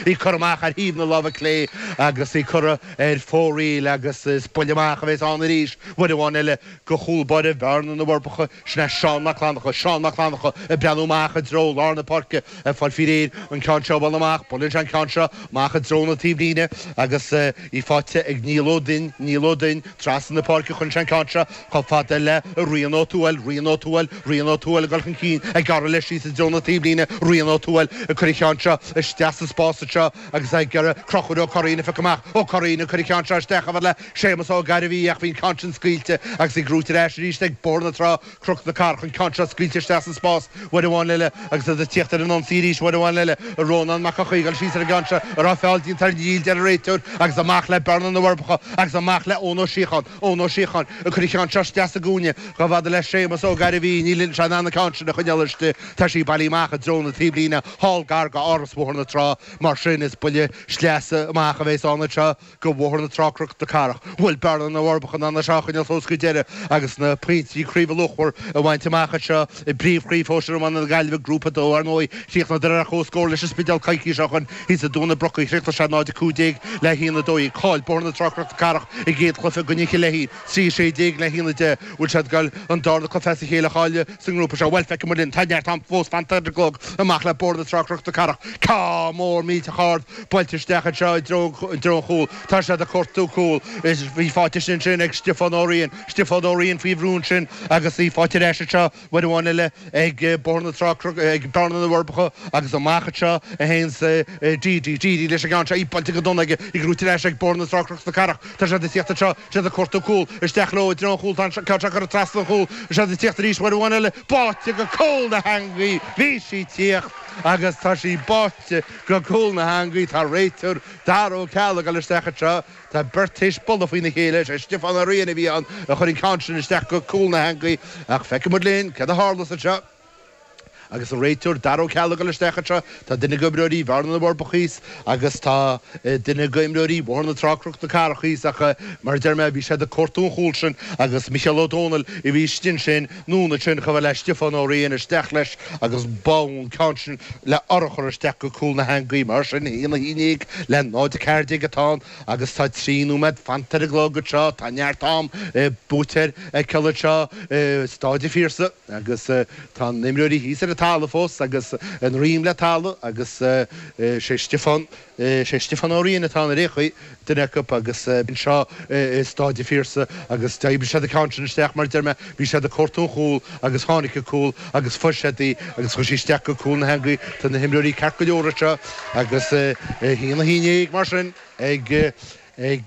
Í curtha amach ar thaobh na láimhe clé agus í curtha ar fóraoil agus is buille amach a bheas ann arís uair amháin eile go chúl báire Bhearna na bhForbacha. Sin é Seán Mac Fhlannacha, Seán Mac Fhlannacha ag breathnú amach i dtreo lár na páirce ag fáil fí réir an ceann seo a bhualadh amach. Buaileann sé an ceann seo amach i dtreo na taobhlíne agus í faighte ag Niall Ó Duinn, Niall Ó Duinn trasna na páirce cuireann sé an ceann seo Chomh fada le Ryan Ó Tuathail, Ryan Ó Tuathail, Ryan Ó Tuathail ag dul chun cinn, ag gearradh leis síos i dtreo na taobhlíne, Ryan Ó Tuathail ag cur an ceann seo isteach sa spás anseo agus ag iarraidh Crochúr Ó Curraoin a phiocadh amach, Ó Curraoin ag cur an ceann seo isteach, chomh fada le Séamus Ó Gairbhí ach bhí an ceann sin scaoilte agus í gnóite ar ais arís ag Bóthar na Trá, Cnoc na Cathrach an ceann seo scaoilte isteach sa spás, uair amháin eile agus iad ag tíocht ar an ionsaí arís uair amháin eile, Rónán Mac Eochaidh ag dul síos ar an gceann seo, an raibh feall déanta air, níl a deir an réiteoir agus amach le Bearna na bhForbacha agus amach le Eoin Ó Síocháin. Eoin Ó Síocháin ag cur an ceann seo isteach sa gcúinne chomh fada le Séamas Ó Gairbhí, níl seisean in ann an ceann sin a choinneáil istigh, tá sí bailithe amach i dtreo na taobhlíne thall gar go Áras Bhóthar na Trá mar sin is buille sleasa amach a bhéas ann anseo go Bhóthar na Trá Cnoc na Cathrach. Bhfuil Bearna na bhForbacha in ann é seo a choinneáil suas go deireadh agus na pointí craoibhe luachmhar a bhaint amach anseo. I bpríomhchraobh shóisir iomána na Gaillimhe, Grúpa 2, ar ndóigh, chríochnaíodar ar comhscór leis an Spidéal coicís ó shin thíos i dTóin na Brocaí. Chríochnaigh sé 0-15 le 1-12. Chaill Bóthar na Trá Cnoc na Cathrach a gcéad chluiche i gcoinne Chill Éithí, 3-16 le 1-10. Bhfuil siad ag goil an darna cluiche as a chéile a chailleadh sa ngrúpa seo. Bhuel, feicfidh muid linn. Tá neart am fós fanta ar an gclog amach le Bóthar na Trá Cnoc na Cathrach. Ceann mór millteach ard, buailte isteach anseo i dtreo an chúil. Tá siad ag cuartú cúl. Is í faighte ansin ag Stiofán Ó Riain. Stiofán Ó Riain faoi bhrú ansin agus í faighte ar ais anseo uair amháin eile ag Bóthar na Trá, ag Bearna na bhForbacha agus amach anseo a théann Dee Dee, Dee Dee leis an gceann seo, í buailte go dona aige, í gnóite ar ais ag Bóthar na Trá Cnoc na Cathrach. Tá siad ag tíocht anseo, siad ag cuartú cúl, isteach leo i dtreo an chúl, tá an ceann seo curtha trasna an chúl, siad ag tíocht arís uair amháin eile, báite go cúl na heangaí, bhí sí tíocht agus tá sí báite go cúl na heangaí, tá an réiteoir, Dara Ó Ceallaigh, ag dul isteach anseo. Tá beirt théis bualadh faoina chéile, is é Stiofán Ó Riain a bhí ann a chuir an ceann sin isteach go cúl na heangaí, ach feicfidh muid linn céard a tharlós anseo. Agus an réiteoir Dara Ó Ceallaigh ag dul isteach anseo, tá duine d'imreoirí Bhearna-Na bhForbacha thíos agus tá duine d'imreoirí Bhóthar na Trá-Cnoc na Cathrach thíos ach, mar a deir mé, bhí siad ag cuartú an chúil sin agus Micheál Ó Domhnaill a bhí istigh ansin. Anonn ansin chomh fada le Stiofán Ó Riain isteach leis agus bháigh an ceann sin le urchar isteach go cúl na heangaí. Mar sin 1-11 le 0-14 atá ann agus tá trí nóiméad fanta ar an gclog anseo. Tá neart am buaiteoir a fheiceáil anseo i Stáid a' Phiarsaigh agus tá na himreoirí thíos ar an talamh fós agus a ndroim le talamh agus is é Stiofán Is é Stiofán Ó Riain atá ina fhraoch, duine acu, agus anseo i Stáid a' Phiarsaigh, agus d'oibrigh siad an ceann sin isteach, mar a deir mé, bhí siad ag cuartú an chúil agus tháinig an cúl agus fuair siad í agus chuir sé isteach go cúl na heangaí. Tá na himreoirí ceart go leor anseo agus a haon, a haon déag, mar sin, ag, ag,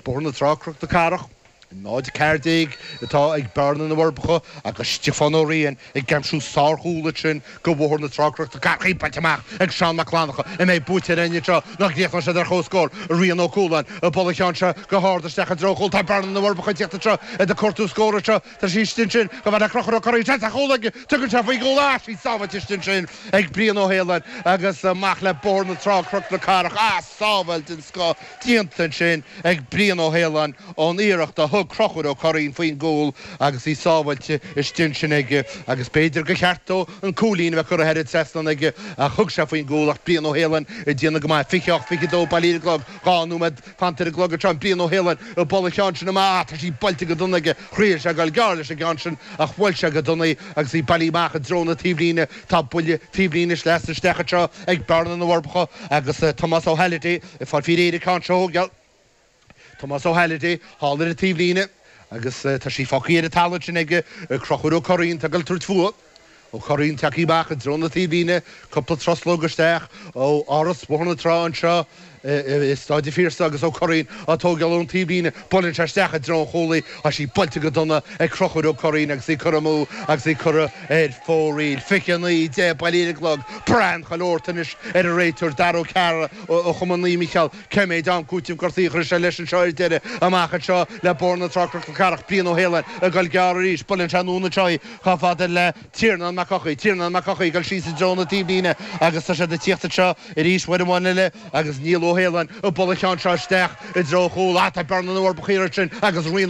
Bóthar na Trá, Croc na Cathrach. Náid a ceathair déag atá ag Bearna na bhForbacha agus Stiofán Ó Riain ag aimsiú sárchúl ansin go Bhóthar na Trá, Croc na Cathrach, í bainte amach ag Seán Mac Fhlannacha an mbeidh buaiteoir againn anseo nó an gcríochnóidh siad ar chomhscór? Rian Ó Cualáin ag bualadh an cheann seo go hard isteach i dtreo an chúil. Tá Bearna na bhForbacha ag tíocht anseo iad ag cuartú scór anseo tá sí istigh ansin chomh fada le Crochúr Ó Curraoin seans ar chúl agus tugann sé faoin gcúl ach tá sí sábháilte istigh ansin ag Brian Ó hAoláin agus amach le Bóthar na Trá, Croc na Cathrach ah sábháil den scoth déanta ansin ag Brian Ó hAoláin ón iarracht a thug Crochúr Ó Curraoin faoin gcúl agus í sábháilte istigh ansin aige agus b'fhéidir gur cheart dó an cúilín a bheith curtha thar an trasnán aige ach thug sé faoin gcúl ach Brian Ó hAoláin ag déanamh go maith, 28, 22, bailithe ar an gclog, dhá nóiméad fanta ar an gclog anseo, Brian Ó hAoláin ag bualadh an cheann sin amach ach tá sí buailte go dona aige, thriail sé dul gearr leis an gceann sin ach bhuail sé go dona í agus í bailithe amach i dtreo na taobhlíne, tá buille taobhlíne sleasa isteach anseo ag Bearna, na bhForbacha agus Tomás Ó Halliday. B'fhéidir an ceann seo a thógáil, Tomás Ó Halliday thall ar an taobhlíne agus tá sí fágthaí ar an talamh ansin ag Crochúr Ó Curraoin. Atá ag goil ag tabhairt fúithi. Ó Curraoin tagthaí amach i dtreo na taobhlíne cúpla truslóg isteach ó Áras Bhóthar na Trá anseo i Stáid an Phiarsaigh agus Ó Curraoin á tógáil ón taobhlíne. Buaileann sé isteach i dtreo an chúil í. Tá sí buailte go dona ag Crochúr Ó Curraoin agus í curtha amú agus í curtha ar fóraíl. 29, 10 bailithe ar an gclog. Braitheann chuile shórt anois ar an réiteoir Daragh O'Carroll. ó Chumann Naomh Mícheál, cé méid am cúitimh gortuithe a chuirfeas sé leis anseo ar deireadh, amach anseo le Bóthar na Trá, Croc na Cathrach, Brian Ó hAoláin, ag goil gearr arís, buaileann sé anonn anseo í chomh fada le Tiarnán Mac Eochaidh, Tiarnán Mac Eochaidh ag goil síos i dtreo na taobhlíne agus tá siad ag tíocht anseo arís uair amháin eile agus Niall Ó hAoláin ag bualadh an cheann seo isteach i dtreo an chúil, ach tá Bearna na bhForbacha roimhe ansin agus Rian Ó.